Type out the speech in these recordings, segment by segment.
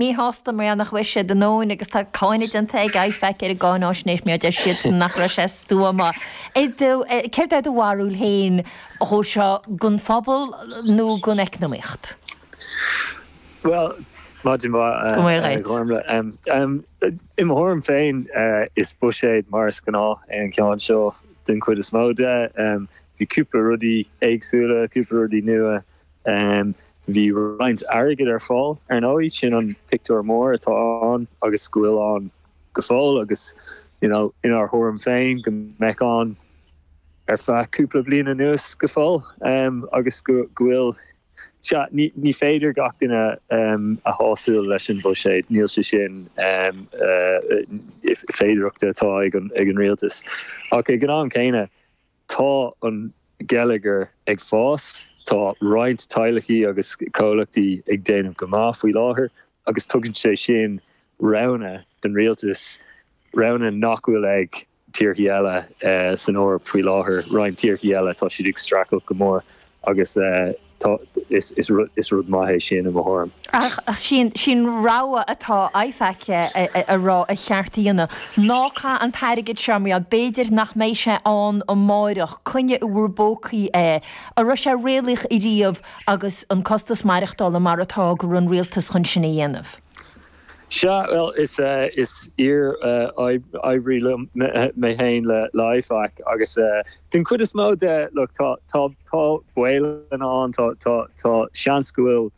Míshásta mar gheall nach bhfuair siad a ndóthain agus tá cáineadh déanta ag IFAC ar an gcáináisnéis mar deir siadsan nach raibh sé stuama. Céard do bharúil féin dhó seo don phobal nó don eacnamaíocht? Bhuel, maidin mhaith go maith agat. Gormlaith ann. I mo thuairim féin is buiséad mar is gnáth é an ceann seo den chuid is mó de. Bhí cúpla rudaí éagsúla, cúpla rudaí nua. Bhí roinnt airgid ar fáil, ar ndóigh, sin an pictiúr mór atá ann agus go bhfuil ann go fóill agus inár thuairim féin go mbeidh ann ar feadh cúpla bliain anuas go fóill agus go bhfuil, sea, ní féidir gach duine a shásamh leis an bhuiséad, níl sé sin féidearthachta atá ag an rialtas ach ag an am céanna, Tá an geilleagar ag fás, tá roinnt teaghlaigh agus comhlachtaí ag déanamh go maith faoi láthair agus tugann sé sin roghanna don rialtas, roghanna nach bhfuil ag tíorthaí eile san Eoraip faoi láthair. Roinnt tíorthaí eile, tá siad ag streachailt go mór agus is rud maith é sin i mo thuairim. Ach sin rogha atá IFAC a rá ba cheart a dhéanamh. Ná caith an t-airgead seo mar b'fhéidir nach mbeidh sé ann amáireach. Coinnigh i bhur bpócaí é. An raibh sé réalaíoch riamh agus an costas maireachtála mar atá go raibh an rialtas chun sin a dhéanamh? Sea, bhuel, is iar-oibrí mé féin le IFAC agus den chuid is mó de, look, tá baol ann, tá seans go bhfuil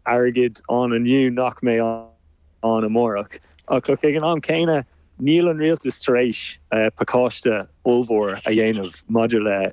airgead ann inniu nach mbeidh ann amárach, ach look, ag an am céanna, níl an rialtas tar éis pacáiste ollmhór a dhéanamh maidir le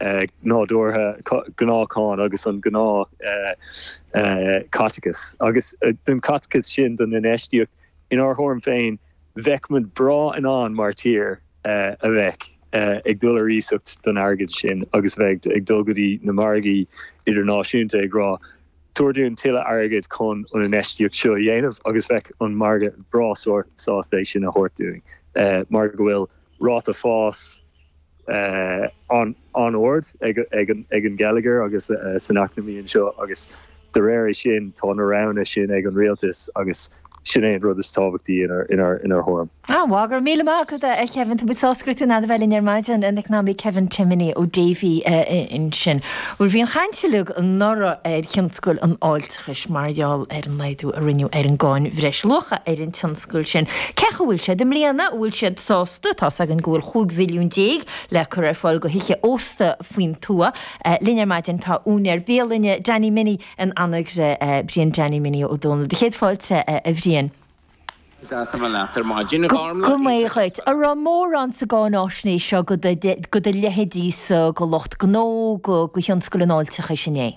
nádúrtha, gnáthcháin agus an gnáthchaiteachas. Agus don chaiteachas sin, don infheistíocht inár thuairim féin, bheadh muid breá in ann mar tír a bheith ag dul ar iasacht don airgead sin agus a bheith ag dul go dtí na margaí idirnáisiúnta ag rá, Tabhair dúinn tuilleadh airgid chun an infheistíocht seo a dhéanamh agus bheadh an margadh breá sásta é sin a thabhairt dúinn mar go bhfuil ráta fás an-ard ag an gheilleagar agus san eacnamaí anseo agus de réir é sin tá na roghanna sin ag an rialtas agus sin é an rud is tábhachtaí inár thuairim. Bhuel, go raibh míle maith agat, a Khevin. Tá muid sásta go raibh tú in ann a bheith linn ar maidin, an t-eacnamaí Kevin Timoney ó Davy ansin. Bhuel, bhí an chaint uilig anuraidh ar thionscal an fháilte. cúis mar gheall ar an laghdú a rinneadh ar an gcáin bhreisluacha ar an tionscal sin. Cén chaoi a bhfuil siad i mbliana? An bhfuil siad sásta? Tá a fhios againn go bhfuil chúig mhilliún déag le cur ar fáil go thithe ósta faoin tuath. Linn ar maidin tá úinéir bialainne Danny Minnie in Anagaire, Brian Danny Minnie Ó Domhnaill. Do chéad fáilte, a Bhriain. Go raibh maith agat. An raibh mórán sa gcáináisnéis seo go do leithéidí-sa, go lucht gnó, go thionscal an fháilteachais inné?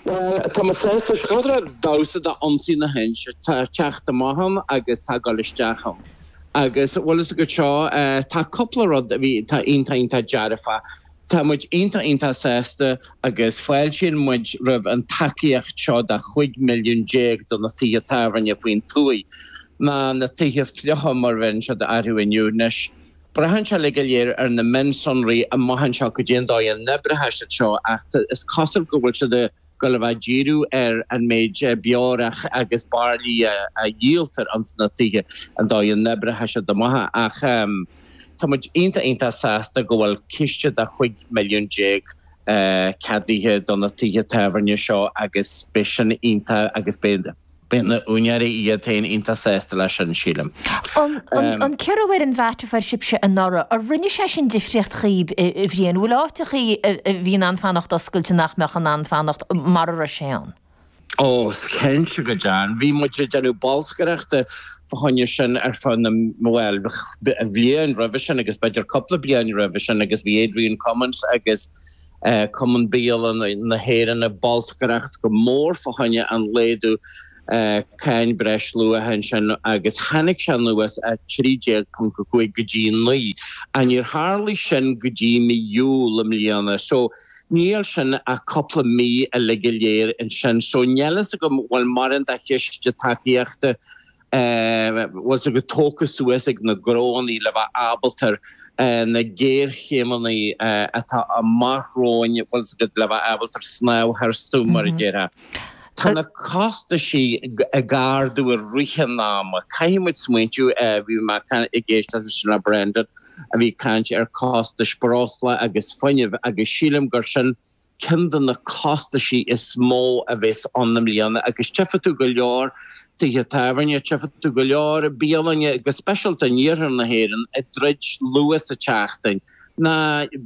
Bhuel, tá mé sásta. Is cosúil le damhsa Ionsaí na hInse. Tá teacht amach ann agus tá goil isteach ann. Agus, bhfuil a fhios agat seo, tá cúpla rud a bhí, tá iontach, iontach dearfach. Tá muid iontach iontach sásta agus fáiltíonn muid roimh an tacaíocht seo de chúig milliún déag do na tithe tábhairne faoin tuaith, ná na tithe fliucha mar a bheireann siad orthu inniu anois. Braitheann sé uilig go léir ar na mionsonraí i dtaobh seo, goidé an dóigh a n-oibreoidh siad seo ach is cosúil go bhfuil siad ag gabháil a bheith díriú ar an méid beorach agus bairillí a dhíoltar ins na tithe an dóigh a n-oibreoidh siad seo amach é ach tá muid iontach iontach sásta go bhfuil ciste de chúig milliún déag ceadaithe do na tithe tábhairne seo agus beidh sin iontach agus beidh Beidh na úinéirí iad féin iontach sásta leis sin, sílim. An ciorrú ar an VAT a fuair sibhse anuraidh, ar rinne sé sin difríocht dhaoib, a Bhriain? An bhfuil áiteachaí a bhí in ann fanacht oscailte nach mbeadh in ann fanacht mara raibh sé ann? Ó, cinnte go deimhin. Bhí muid ag déanamh bolscaireachta fá choinne sin ar feadh na, bhuel, bhliain roimhe sin agus b'fhéidir cúpla bliain roimhe sin agus bhí Adrian Cummins agus, Cumann Bialann na hÉireann ag bolscaireacht go mór fá choinne an laghdú cáin breisluacha sin agus tháinig sé anuas as 13.5 go dtí 9 ach níor tharlaigh sin go dtí mí Iúil i mbliana so níl sin ach cúpla mí uilig go léir ansin so níl a fhios agam bhfuil mórán de chiste tacaíochta bhfuil a fhios agat tógtha suas ag na gnónna le bheith ábalta ar na géarchéimeanna atá amach romhainn, bhfuil a fhios agat, le bheith ábalta snámh tharstu mar a déarfá. Tá na costaisí ag ardú i rith an ama. Caithfidh muid smaointiú, bhí mé ag éisteacht ansin le Brendan a bhí ag caint ar costais breosla agus fuinnimh agus sílim gur sin ceann de na costaisí is mó a bheas ann i mbliana agus tífidh tú go leor tithe tábhairne, tífidh tú go leor bialanna go speisialta in iarthar na hÉireann ag druid luath sa tseachtain. Nó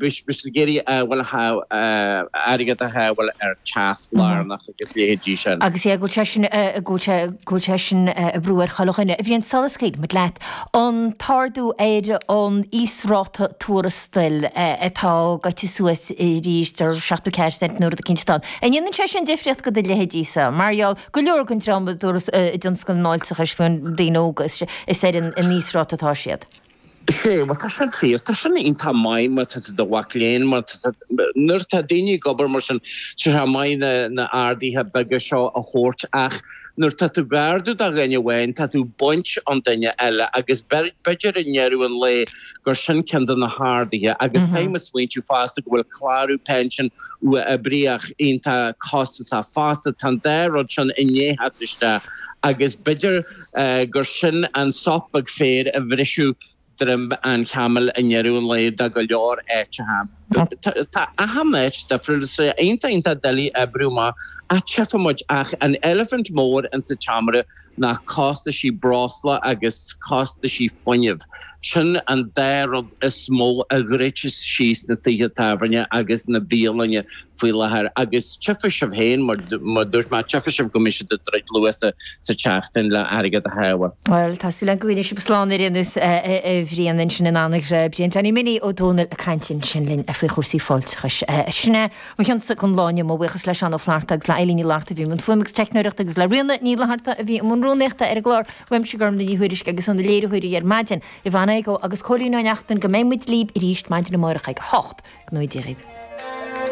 beidh siad ag iarraidh airgead a shábháil ar teas lárnach. agus leithéidí sin. Agus é ag gabhail sé sin a, ag gabhail sé, ag gabhail sé sin a, oibriú ar chuile dhuine a Bhriain, sula scaoilfidh muid leat. An t-ardú ar an íosráta tuarastail atá gaibhte suas arís de seachtó ceathair cent an uair rud eicínt atá ann. An ndéanann sé sin difríocht go do leithéidse, mar gheall go leor den dream i dturas, i dtionscal an fháilteachais faoin, daoine óga is, is ar an, an íosráta atá siad? Sea, bhuel, tá sin fíor. Tá sin iontach maith má tá tú i do mhac léinn, má tá tú, nuair atá daoine ag obair mar sin, sea, tá sé maith na, na arduithe beaga seo a thabhairt ach nuair atá tú ag ardú do dhuine amháin, tá tú ag baint ón duine eile agus b'fhéidir i ndeireadh an lae gur sin ceann de na harduithe agus táim ag smaointiú fosta go bhfuil clárú pension uathoibríoch iontach costasach fosta, tá an dá rud sin i ndiaidh theacht isteach agus b'fhéidir. gur sin an sopóg féir a bhrisfeadh droim an chamaill i ndeireadh an lae do go leor áiteacha. Tá achan áit difriúil, iontach, iontach doiligh oibriú amach ach tchifidh muid, ach an eilifint mhór in sa tseomra ná costaisí breosla agus costaisí fuinnimh. Sin an dá rud is mó a dhruidfeas síos na tithe tábhairne agus na bialainne faoi láthair agus tchifidh sibh féin mar a dúirt mé, tchifidh sibh go mbeidh siad ag druid luath sa tseachtain le airgead a shábháil. Bhuel, tá súil agam go bhfuileann sibh slán ar aon nós, a Bhriain ansin in Anagaire. Brian Danny Minnie Ó Domhnaill ag caint ansin linn faoi chúrsaí fáilteachais. Sin é, mo cheannsa ag an lá inniu, mo bhuíochas le Seán Ó Flaithearta agus le Eilín Ní Fhlatharta a bhí i mbun fuaime agus teicneoireachta agus le Ríona Ní Fhlatharta a bhí i mbun rúnaíochta ar an gclár. Uaimse, Gormfhlaith Ní Thuairisg agus ó na léiritheoirí ar maidin, Yvonne Igoe agus Cóilín Ó Neachtain go mbeidh muid libh arís maidin amárach ag a hocht. Go ngnóthaí Dia dhíbh.